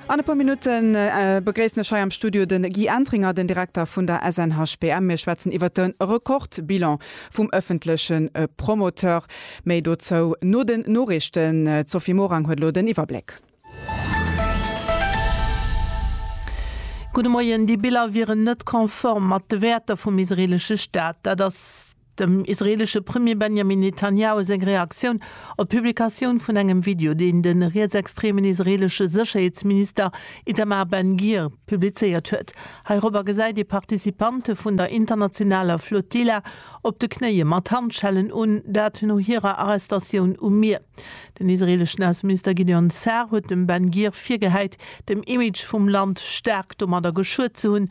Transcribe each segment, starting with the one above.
An e puer Minutten begréissen ech hei am Studio de Guy Entringer, den Direkter vun der SNHBM. Mir schwätzen iwwert de Rekordbilan vum ëffentleche Promoteur. Méi dozou no den Noriichten. D'Sophie Morang huet elo den Iwwerbléck. Gudde Moien. Déi Biller wieren net konform mat de Wäerter vum israeelesche Staat. Dat ass. Dem israeelesche Premier Benjamin Netanjahu seng Reaktioun op d'Publikatioun vun engem Video, deen de rietsextremen israeelesche Sécherheetsminister Itamar Ben-Gir publizéiert huet. Heirobber gesäit ee Participante vun der internationaler Flotilla op de Knéie mat Handschellen un, dat no hirer Arrestatioun um Mier. Den israeeleschen Ausseminister Gideon Sa'ar huet dem Ben-Gir virgehäit, dem Image vum Land staark domadder geschuet ze hunn,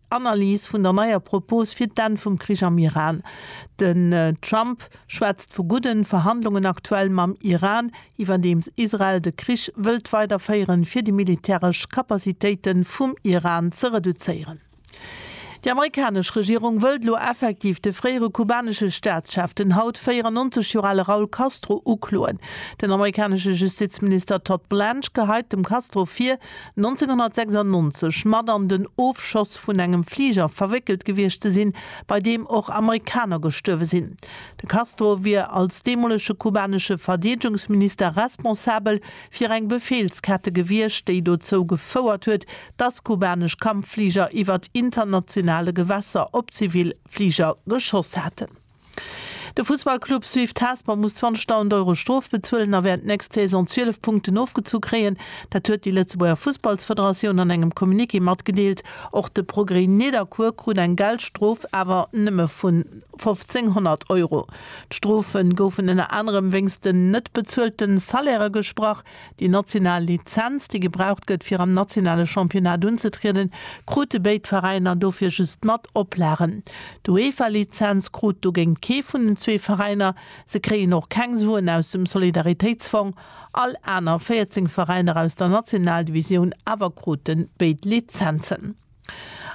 Analys vun der neier Propos fir d'Enn vum Krich am Iran, Den Trump schwätzt vu gudden Verhandlungen aktuell mam Iran, iwwerdeems Israel de Krich wëllt weider féieren, fir déi militäresch Kapazitéiten vum Iran ze reduzéieren. Déi amerikanesch Regierung wëllt elo effektiv de fréiere kubanesche Staatschef, den haut 94 Joer ale Raul Castro, ukloen. Den amerikanesche Justizminister Todd Blanche geheit dem Castro vir, 1996 mat an den Ofschoss vun engem Fliger verwéckelt gewiescht ze sinn, bei deem och Amerikaner gestuerwe sinn. De Castro wier als deemolege kubanesche Verdeedegungsminister responsabel fir eng Befeelskette gewiescht, déi dozou gefouert huet, datt kubanesch Kampffliger iwwert internationale Gewässer op zivil Fliger geschoss haten. De Fussballclub Swift Hesper muss 20.000 Euro Strof bezuelen a wäert d'nächst Saison 12 Punkten ofgezu kréien. Dat huet déi Lëtzebuerger Fussballsfederatioun an engem Communiqué matgedeelt. Och de Progrès Nidderkuer krut eng Geldstrof, awer nëmme vun 1.500 Euro. D'Strofe goufen ënner anerem wéinst den net bezuelte Salairë gesprach. Déi national Lizenz, déi gebraucht gëtt, fir am nationale Championnat unzetrieden, krute béid Veräiner dofir just mat Oplagen. D'UEFA-Lizenz krut dogéint kee vun den zwee Veräiner. Se kréien och keng Suen aus dem Solidaritéitsfong. All aner 14 Veräiner aus der Nationaldivisioun awer krute béid Lizenzen.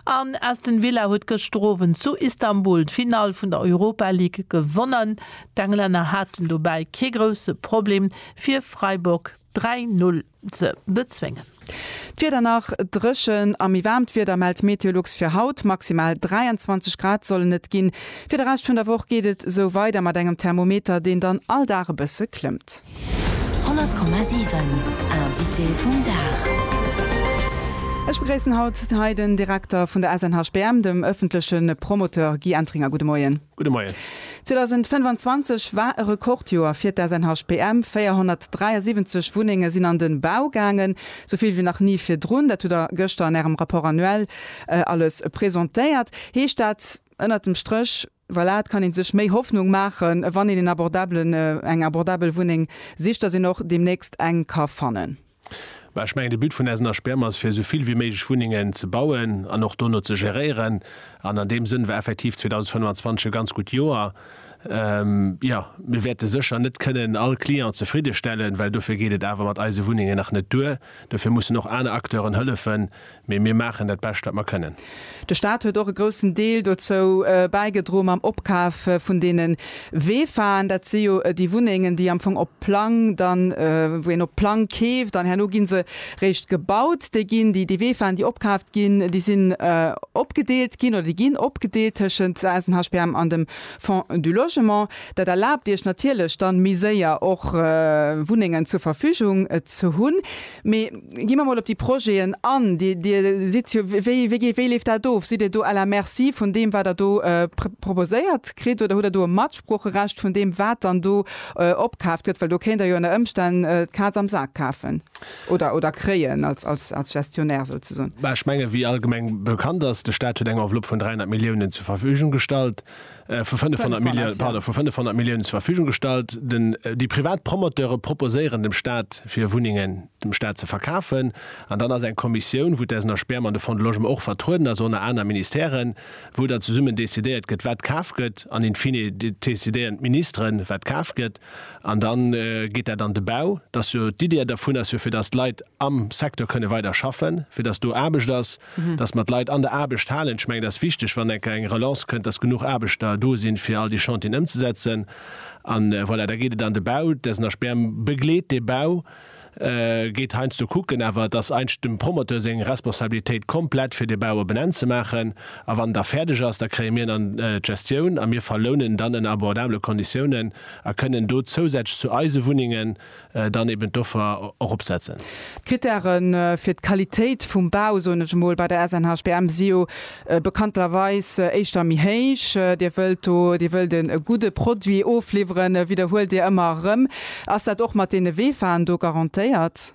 An Aston Villa huet gëschter Owend zu Istanbul d'Finall vun der Europa League gewonnen. D'Englänner haten dobäi kee grousse Problem, fir Freiburg 3, 0 ze bezwéngen. D'Wieder nach dréchen a méi waarmt Wieder mellt Meteolux fir haut. Maximal 23 Grad sollen et ginn. Fir de Rescht vun der Woch geet et esou weider mat engem Thermometer, deen dann all Dag e bësse klëmmt. 100,7 Invité vum Dag. Ech begréissen haut hei den Direkter vun der SNHBM, dem ëffentleche Promoteur Guy Entringer. Gudde Moien. Gudde Moien. 2025 war e Rekordjoer fir d'SNHBM. 473 Wunnenge sinn an de Bau gaangen, sou vill wéi nach ni virdrun. Dat hutt Der gëschter an Ärem Rapport annuel alles presentéiert. Heescht dat ënnert dem Stréch, Voilà, et kann ee sech méi Hoffnung maachen, wann een een abordabelen, eng abordabel Wunneng sicht, dass een och deemnächst eng ka fannen. Mä ech mengen, de But vun eisen HPM ass, fir esou vill wéi méiglech Wunnengen ze bauen an och dono ze geréieren. An an deem Sënn war effektiv 2025 e ganz gutt Joer. Jo, mir wäerte sécher net kënnen all Client zefriddestellen, well dofir geet et awer mat eise Wunnengen nach net duer. Dofir mussen och aner Acteuren hëllefen, Mee mir maachen dat Bescht, wat mer kënnen. De Staat huet och e groussen Deel dozou bäigedro mam Opkaf vun deene Wefaen. Dat si jo déi Wunnengen, déi am Fong op Plang dann, wou een op Plang keeft an herno gi se réischt gebaut. Déi ginn, déi Wefaen, déi opkaaft ginn, déi sinn opgedeelt ginn oder déi ginn opgedeelt tëschent eis, den HPM an dem Fonds du Logement. Dat erlaabt Iech natierlech dann méi séier och Wunnengen zur Verfügung ze hunn. Mee gi mer mol op déi Projeten an. Dir, Dir sidd jo, wéi, wéi, wéi leeft dat of? Sidd Dir do à la merci vun deem, wat Der do proposéiert kritt oder hutt Der do e Matsproocherecht vun deem, wat dann do opkaaft gëtt? Well do kéint Der jo ënner Ëmstänn d'Kaz am Sak kafen oder, oder kréien als, als, als Gestionnaire souzesoen. Ech menge wéi allgemeng bekannt ass, de Staat huet eng Enveloppe vun 300 Milliounen zur Verfügung gestallt. vu 500 Milliounen zur Verfügung gestallt. Déi privat Promoteure proposéieren dem Staat, fir Wunnengen dem Staat ze verkafen. An dann ass eng Kommissioun, wou d'SNHPM an de Fonds de Logement och vertrueden ass, ënner aner Ministèren, wou dann zesummen decidéiert gëtt, wat kaf gëtt. An in fine decidéieren d'Ministeren, wat kaf gëtt. An da geet dat an de Bau. D'Iddi dovun ass jo, fir dass d'Leit am Secteur kënne weider schaffen, fir dass do Aarbecht ass. dass mer d'Leit an der Aarbecht halen. Ech mengen, dat ass wichteg, wann eng Kéier eng Relance kënnt, dass genuch Aarbechter do sinn, fir all déi Chantieren ëmzesetzen. An voilà, da geet et an de Bau. D'SNHPM begleet dee Bau, geet heiansdo kucken, awer et ass eigentlech dem Promoteur seng Responsabilitéit komplett, fir dee Bau op en Enn ze maachen. A wann en da fäerdeg ass, da kréie mir en an d'Gestioun a mir verlounen en dann ënner abordabele Konditiounen a kënnen do zousätzlech zu eise Wunnengen, dann eben d'Offer eropsetzen. D'Krittäre fir d'Qualitéit vum Bau, soen ech emol, bei der SNHBM si jo bekannterweis éischter méi héich. Dir wëllt do, Dir wëllt e gudde Produit ofliwweren, widderhuelt Dir ëmmer erëm. Ass dat och mat deene Weefaren do garantéiert?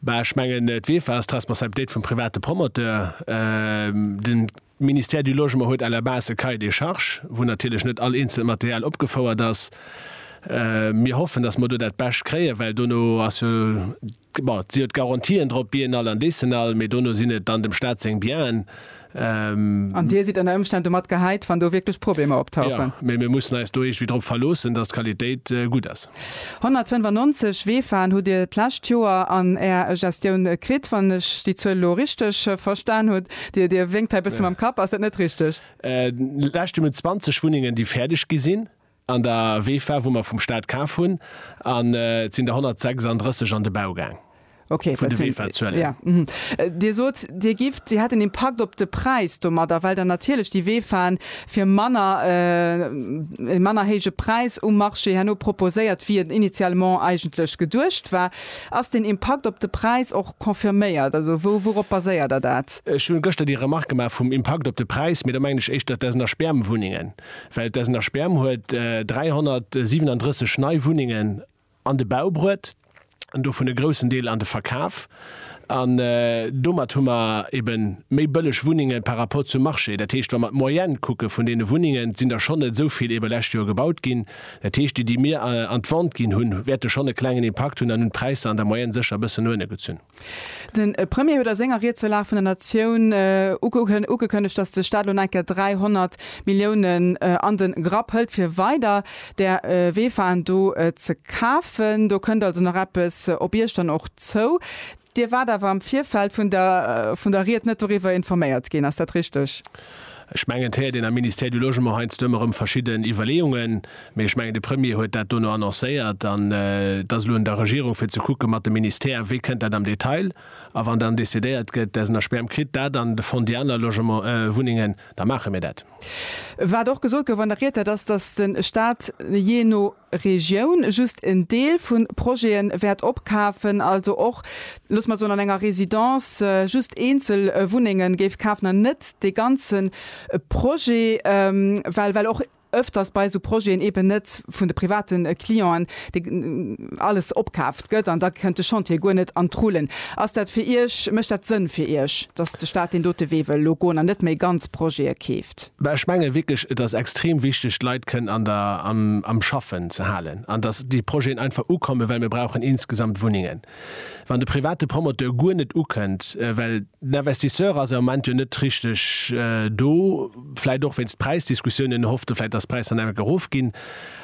Bah, ech mengen, d'Weefer ass d'Responsabilitéit vum private Promoteur. Den De Ministère du Logement huet à la base e Cahier des charges, wou natierlech net all eenzelt Material opgefouert ass. Mir hoffen, dass mer do dat Bescht kréien, well dono ass jo, bon, et sinn jo d'Garantien drop, Biennale an Décennale, mee dono sinn et dann dem Stat seng Bienen. An Dir sidd ënner Ëmstänn domat gehäit, wann do wierklech Problemer optauchen? Jo, mee mir mussen eis do iergendwéi drop verloossen, dass d'Qualitéit gutt ass. 195 Weefan hutt Dir d'lescht Joer an Är Gestioun kritt, wann ech déi Zuel elo richteg verstan hunn. Dir, Dir wénkt hei e bësse mam Kapp. Ass dat net richteg? Lescht Joer hunn 20 Wunnengen, déi fäerdeg gi sinn, an der WEFA, wou mer vum Staat kaf hunn. An et sinn der 136 an de Bau gaang. Okay, dat sinn, jo. Dir sot, Dir gift, si hätt en Impakt op de Präis domadder, well der natierlech déi WEFAen fir manner, e manner héije Präis um Marché herno proposéiert, wéi et initialement eigentlech geduecht war. Ass deen Impakt op de Präis och confirméiert? Also wou wourop baséiert der dat? Ech hunn gëschter déi Remarque gemaach vum Impakt op de Präis, mee da mengen ech éischter d'Essen a Sperm Wunnengen, well d'Essen a Sperm huet 337 nei Wunnengen an de Bau bruet an dovun e groussen Deel an de Verkaf an domat hu mer eben méi bëlleg Wunnengen par rapport zum Marché. Dat heescht wa mer d'Moyenne kucke vun deene Wunnengen, sinn der schonn net esou vill ebe lescht Joer gebaut ginn. Dat heescht, déi, déi mir an d'Vente ginn hunn, wäerte schonn e klengen Impakt hunn an hunn d'Präisser an der Moyenne sécher e bëssen no ënne gezunn. De Premier huet a senger Ried zur Lag vun der Natioun ugekënnegt, datt de Staat elo nach eng Kéier 300 Milliounen an de Grapp hëlt, fir weider där WEFAen do ze kafen. Do kënnt also nach eppes op Iech dann och zou. Dir waart awer am Virfeld vun der vun der Ried net doriwwer informéiert ginn, ass dat richteg? Ech mengen, et héiert een am Ministère du Logement heiansdo ëmmer erëm verschidden Iwwerleeungen, mee ech mengen, de Premier huet dat dono annoncéiert an et ass elo un der Regierung fir ze kucke mat de Ministère, wéi kënnt dat am Detail. A wann dann decidéiert gëtt, dass een a Sperm kritt, dat an de Fond déi aner Logement, Wunnengen, da maache mir dat. Wat och gesot gouf an der Ried, dat ass, dass de Stat jee no. Regioun just en Deel vu Projete wäert opkafen, also och, loosse mer soen, an enger Résidence just eenzel Wunnenge géif kafen an net dee ganze Projet, well well och öfters bei esou Projeten eeben net vun de private Clienten dee alles opkaaft gëtt an da kënnt de Chantier guer net an d'Rullen. Ass dat fir Iech, mécht dat Sënn fir Iech, dass de Stat deen dote Wee wëll elo goen an net méi ganz Projete keeft? Mä ech menge wierklech, et ass extrem wichteg, d'Leit kënnen an der, am, am Schaffen ze halen an datt déi Projeten einfach ukommen, well mir brauchen insgesamt Wunnengen. Wann de private Promoteur guer net ukënnt, well den Investisseur ass am Moment jo net richteg do, vläicht och wéinst Präisdiskussiounen, en hofft vläicht, datt d'Präisdynamik erofginn,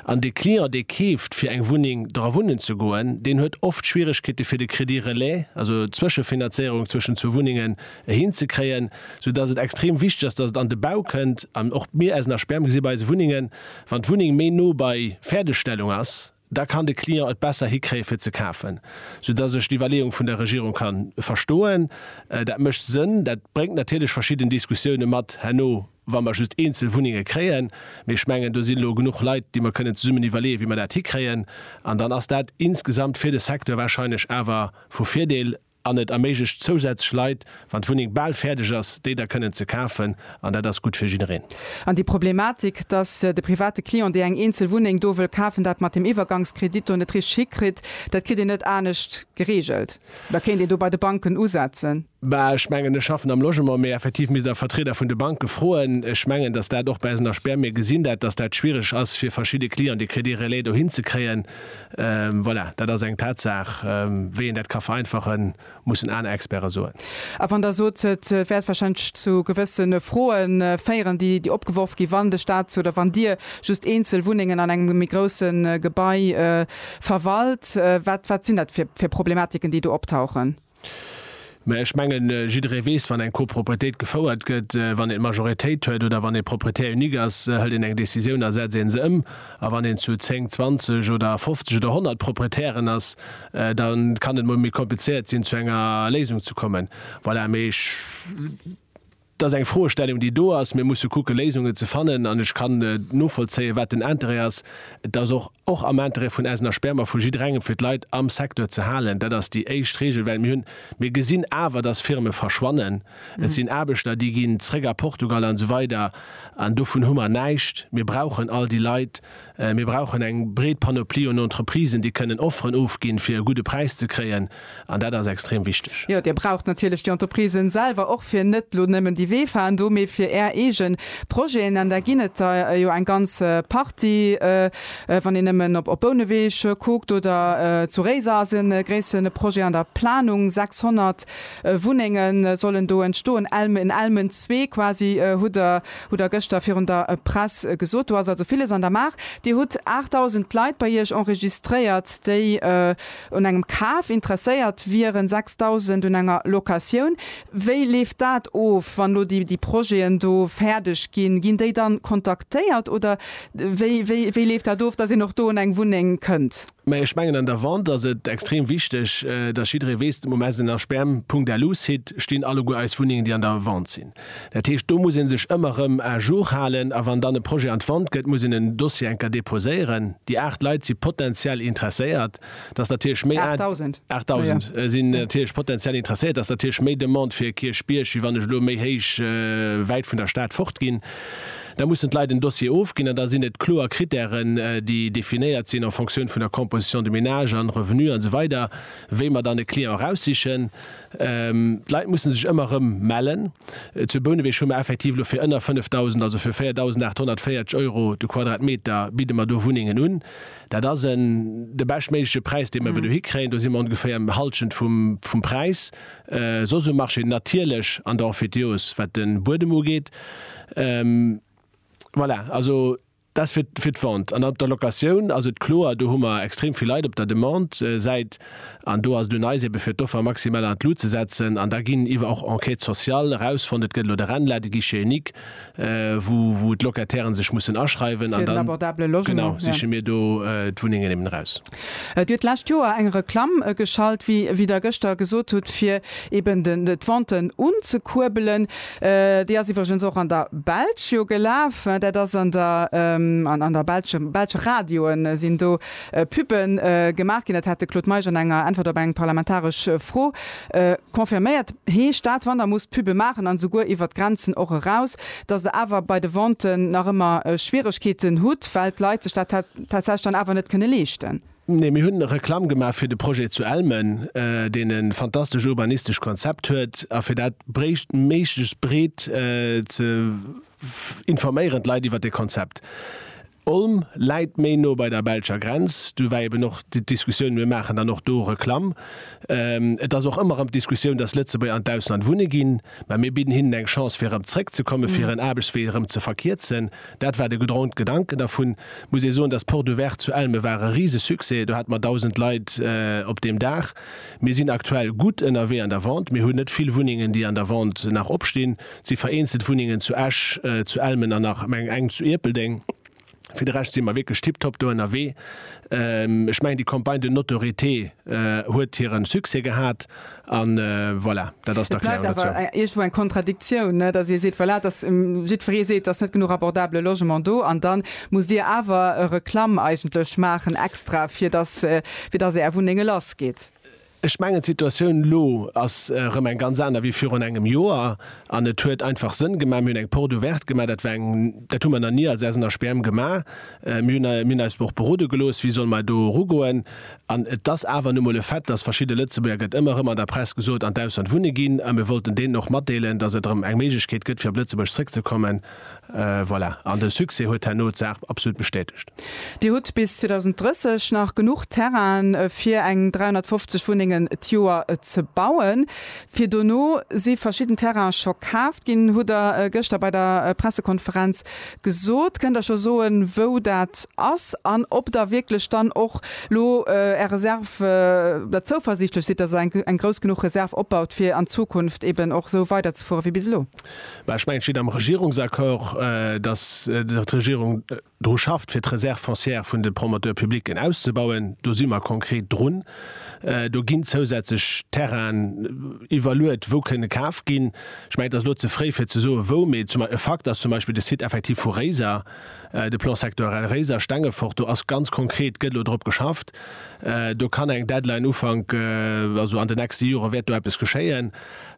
an de Client, dee keeft, fir eng Wunneng dra wunnen ze goen, deen huet oft Schwieregkeete fir de Crédit relais, also d'Zwëschefinanzéierung zwëschen zwou Wunnengen, hinzekréien, sou dass et extrem wichteg ass, dass et an de Bau kënnt an och mir aus Sperm gesi bei eise Wunnengen, wann d'Wunneng méi no bei Fäerdegstellung ass, da kann de Client et besser hikréie fir ze kafen, sou dass ech d'Iwwerleeung vun der Regierung ka verstoen. Dat mécht Sënn. Dat bréngt natierlech verschidden Diskussioune mat herno, wa mer just eenzel Wunnenge kréien, mee ech mengen do si lo genuch Leit, déi mer kënnen zesummen iwwerleeë wéi mer dat hikréien an dann ass dat insgesamt fir de Secteur warscheinlech awer vu Virdeel. An et erméiglecht zousätzlech Leit, wann d'Wunneng bal fäerdeg ass, déi da kënnen ze kafen. An dat ass gutt fir jiddereen. An déi Problematik, dass de private Client, dee eng eenzel Wunneng do wëll kafen, dat mat deem Iwwergangskredit do net richteg hikritt, dat kritt een net anescht gereegelt. Oder kéint een do bei de Banken usetzen? Bah, ech mengen, ech schaffen am Logement, mee effektiv misst Der Vertrieder vun de Banke froen. Ech mengen, dass dat och bei eisen Aspären, mir gesinn dat, dass dat schwierig ass fir verschidde Clients, dee Crédit relais dohin ze kréien. Voilà, dat ass eng Tatsaach. Wéi een dat ka vereinfachen, mussen aner Experte soen. A wann Der sot, et wäert wahrscheinlech zu gewësse Froe féieren, déi opgeworf ginn, wann de Stat oder wann Dir just eenzel Wunnengen an engem méi grousse Gebai verwalt, wat sinn dat fir Problematiken, déi do optauchen? Mä ech mengen, jidderee weess, wann eng Copropriétéit gefouert gëtt, wann een d'Majoritéit huet oder wann ee Propriétaire unique ass, hëlt een eng Décisioun a setz een se ëm. A wann een zu zéng, zwanzeg oder fofzeg oder honnert Propriétairen ass, da kann et mol méi komplizéiert sinn, zu enger Léisung ze kommen. Voilà, mee ech. Dat ass eng Froestellung, déi do ass. Mir musse kucken, Léisungen ze fannen. An ech kann novollzéien, wat den Interêt ass. Et ass och och am Interêt vun eisen Aspermer, vu jidderengem, fir d'Leit am Secteur ze halen. Dat ass déi éischt Regel, well mir hunn, mir gesinn awer, dass Firme verschwannen. Et sinn Aarbechter, déi ginn zréck a Portugal an esou weider. An dovun hu mer näischt. Mir brauchen all déi Leit. Mir brauchen eng breet Panoplie un Entreprisen, déi kënnen Offeren ofginn, fir e gudde Präis ze kréien, an dat ass extrem wichteg. Jo, Dir braucht natierlech déi Entreprisen selwer och, fir net elo nëmmen déi Weefahrten do, mee fir Är eege Projeten, an där ginn et der jo eng ganz Partie, wann een nëmmen op Bouneweg kuckt oder zu Réiser ass e gréisse Projet an der Planung, 600 Wunnenge sollen do entstoen, en Elmen zwee quasi hutt Der Hutt Der gëschter virun der Press gesot. Do ass also villes an der Maach. Dir hutt 8.000 Leit bei Iech enregistréiert, déi un engem Kaf interesséiert wieren, 6.000 un enger Locatioun. Wéi leeft dat of, wann elo déi Projeten do fäerdeg ginn? Ginn déi da kontaktéiert oder wéi leeft dat of, dass een och do un eng Wunneng kënnt? Mä ech mengen, an der Vente ass et extrem wichteg, dass jidderee weess, um SNHBM-Punkt Alu-Site stinn alleguer eis Wunnengen, déi an der Vente sinn. Dat heescht, do muss ee sech ëmmer erëm à jour halen. A wann dann e Projet an d'Vente gëtt, muss een en Dossier eng Kéier deposéieren. Déi aacht Leit si potenziell interesséiert. Dat ass natierlech méi. 8.000. 8.000 sinn natierlech potenziell interesséiert. Dat ass natierlech méi Demande fir Kierchbierg, wéi wann ech elo méi héich, wäit vun der Stad fort ginn. Da mussen d'Leit en Dossier ofginn an da sinn et kloer Krittären, déi definéiert sinn en fonction vun der Composition de ménage an Revenu an esou weider, wéi mer dann e Client eraussichen. D'Leit musse sech ëmmer erëm mellen. Zu Bouneweg hu mer effektiv elo fir ënner 5.000, also fir 4.840 Euro de Quadratmeter, bidde mer do Wunnengen un. Dat ass en, de beschtméigleche Präis, dee mer ebe do hikréien. Do si mer ongeféier um Hallschent vum Präis soss um Marché, natierlech an der Emphytéose, wat de Buedem ugeet. Voilà, also. Dat fir d'Vente. An op der Locatioun ass et kloer, do hu mer extrem vill Leit op der Demande-Säit. An do ass et un eis, ebe fir d'Offer maximal an d'Lut ze setzen. An da ginn iwwer och Enquête sociale erausfonnt, et gëtt elo de RENLA, de Guichet unique, wou d'Locatairen sech mussen aschreiwen. An dann, genau, siche mir do d'Wunnengen eben eraus. Et huet d'lescht Joer eng Reklamm geschalt, wéi wéi Der gëschter gesot hutt, fir eben den d'Venten unzekuerbelen. Déi ass iwwregens och an der Belsch jo gelaf. Dat ass an der an der belsche belsche Radioe sinn do Puben gemaach ginn. Dat hat de Claude Meisch an enger Äntwert op eng parlamentaresch Fro Confirméiert heescht dat, wann Der musst Pube maachen, an esouguer iwwert d'Grenzen och eraus, datt Der awer bei de Venten nach ëmmer Schwieregkeeten hutt, well d'Leit sech dat tatsächlech dann awer net kënne leeschten? Nee, mir hunn Reklamm gemaach fir de Projet zu Elmen, deen e fantastescht urbanistescht Konzept huet. A fir dat bréicht méiglechst breet ze informéieren, d'Leit iwwert dee Konzept. Olm läit méi no bei der belscher Grenz, do war eben och d'Diskussioun, mir maachen dann och do Reklamm. Et ass och ëmmer erëm d'Diskussioun, dass Lëtzebuerger an d'Ausland wunne ginn, mä mir bidden hinnen eng Chance fir erëm zréckzekommen, fir hiren Aarbechtswee erëm ze verkierzen. Dat war de gedrongte Gedanken dervun. Muss ee soen, dass d'Porte ouverte zu Elme war e Risesuccès, do hate mer 1.000 Leit op deem Dag. Mir sinn aktuell gutt ënnerwee an der Vente, mir hunn net vill Wunnengen, déi an der Vente nach opstinn. Et si vereenzelt Wunnengen zu Esch, zu Elmen an nach, mengen eng, zu Ierpeldeng. Fir de Rescht si mer wierklech tiptop do ënnerwee. Ech mengen, déi Campagne de notoriété huet hiren Succès gehat. An voilà, dat ass d'Erklärung dozou. Et bleift awer iergendwou eng Kontradiktioun, net? Dass Dir seet, voilà, dass jiddweree seet, et ass net genuch abordabele Logement do. An da musst Dir awer Reklamm eigentlech maachen extra, fir dass, fir dass Är Wunnenge lassgeet. Ech mengen, d'Situatioun elo ass erëm eng ganz aner wéi virun engem Joer. An et huet einfach Sënn gemaach. Mir hunn eng Porte ouverte gemaach. Dat war eng, dat hu mer nach ni als eisen HPM gemaach. Mir hunn, mir hunn eis och berode gelooss, wéi solle mer do erugoen. An et ass awer nu mol e Fait, dass verschidde Lëtzebuerger, gëtt ëmmer erëm an der Press gesot, an d'Ausland wunne ginn. A mir wollten deenen och matdeelen, dass et erëm eng Méiglechkeet gëtt, fir op Lëtzebuerg zrëckzekommen. Voilà, an de Succès huet herno d'Saach absolut bestätegt. Dir hutt bis 2030 nach genuch Terrainen, fir eng 350 Wunnengen d'Joer ze bauen. Fir dono si verschidden Terraine scho kaaft ginn, hutt Der gëschter bei der Pressekonferenz gesot. Kënnt Der scho soen, wou dat ass an ob Der wierklech dann och lo Är Reserve oder zouversiichtlech sidd, dass Der eng grouss genuch Reserve opbaut, fir an Zukunft eeben och esou weiderzefuere wéi bis elo? Mä ech mengen, et steet am Regierungsaccord, dass d'Regierung dru schafft, fir d'Réserve foncière vun de Promoteurs publics auszubauen. Do si mer konkret drun. Do ginn zousätzlech Terrainen iwwerluet, wou kënne kaf ginn. Ech mengen, et ass elo ze fréi, fir ze soen, wou. Mee e Fakt ass zum Beispill de Site effektiv vu Réiser, de Plan sectoriel Réiser, Stengefort. Do ass ganz konkret, gëtt elo drop geschafft. Do kann eng Deadline Ufank, also an den nächste Jore wäert do eppes geschéien.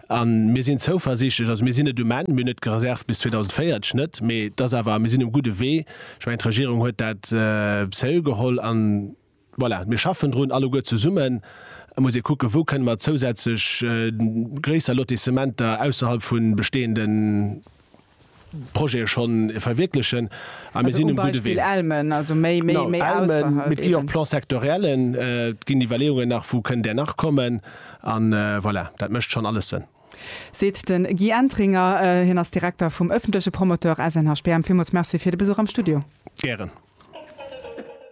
A mir sinn zouversichtlech, also mir sinn net um Enn, mir hunn net gereservt bis 2040 net, mee et ass awer, mir sinn um gudde Wee. Ech mengen, d'Regierung huet dat sérieux geholl an voilà, mir schaffen drun alleguer zesummen. Et muss ee kucken, wou kënne mer zousätzlech gréisser Lotissementer ausserhalb vu bestehenden Projete schonn verwierklechen a mir sinn um gudde Wee. No Elmen, mee et gi och Plan-sectoriellen, et ginn Iwwerleeungen nach, wou kënn där nach kommen an voilà, dat mécht schonn alles Sënn. Seet de Guy Entringer. Hien ass Direkter vum ëffentleche Promoteur SNHPM. Villmools Merci fir de Besuch am Studio. Gären.